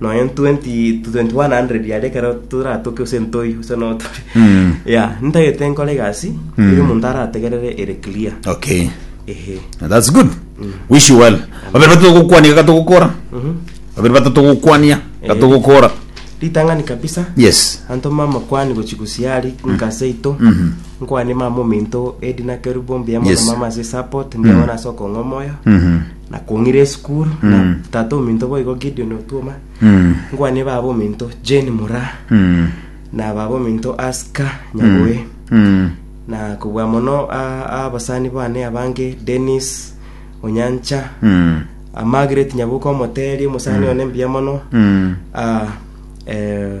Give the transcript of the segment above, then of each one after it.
nonya 20 to 2100 yari ekero toratoke gose ntoi gose no tore Mm. ya ntagete nkore egasi eri omonto arategerere ere clear okay ehe that's good wish you well babere batato gokwania gatogokora babere batato gokwania gatogokora ritang'ani kabisa yes anto mama kwani gochigusiari nkase ito nkwani mama ominto edi nakeru bombi amo Yes. na mama ase support mbiamana ase okong'omoyo Mhm. Nakong'ire esukuru Mm. na tata ominto boigo Gideon Otuoma Mm. nkwane baba ominto Jane Mura Mm. na baba ominto Aska Nyaboe Mm. na kobua mono a- abasani bane abange Dennis Onyancha Mm. a Margaret Nyabuka omoteri omusani one mbuya mono Mm. a eh,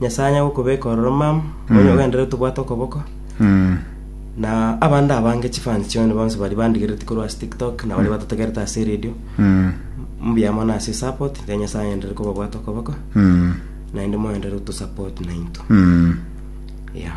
Nyasae anyare gokobeka ororo, mama, onye ogenderere tobwate okoboko, na abande abange chifans chio onye bonsi baria bandigereti korwa ase tiktok na baria batotegerete ase eredio mbuya mono ase support iga nyasae agenderere kobabwata okoboko naende mogenderere gotosapot nainto yeah.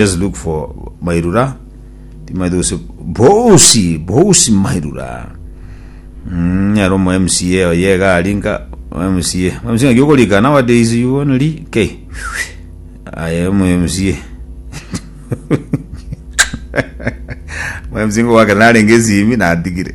Just look for mairura timaete gose bosi bosi mairura Mm, ero mo mca oye iga ari nka mo mca mo mca ngaki okorika nowadays you only ri k aye mo mca mo mca ngowake narenge esimi natigire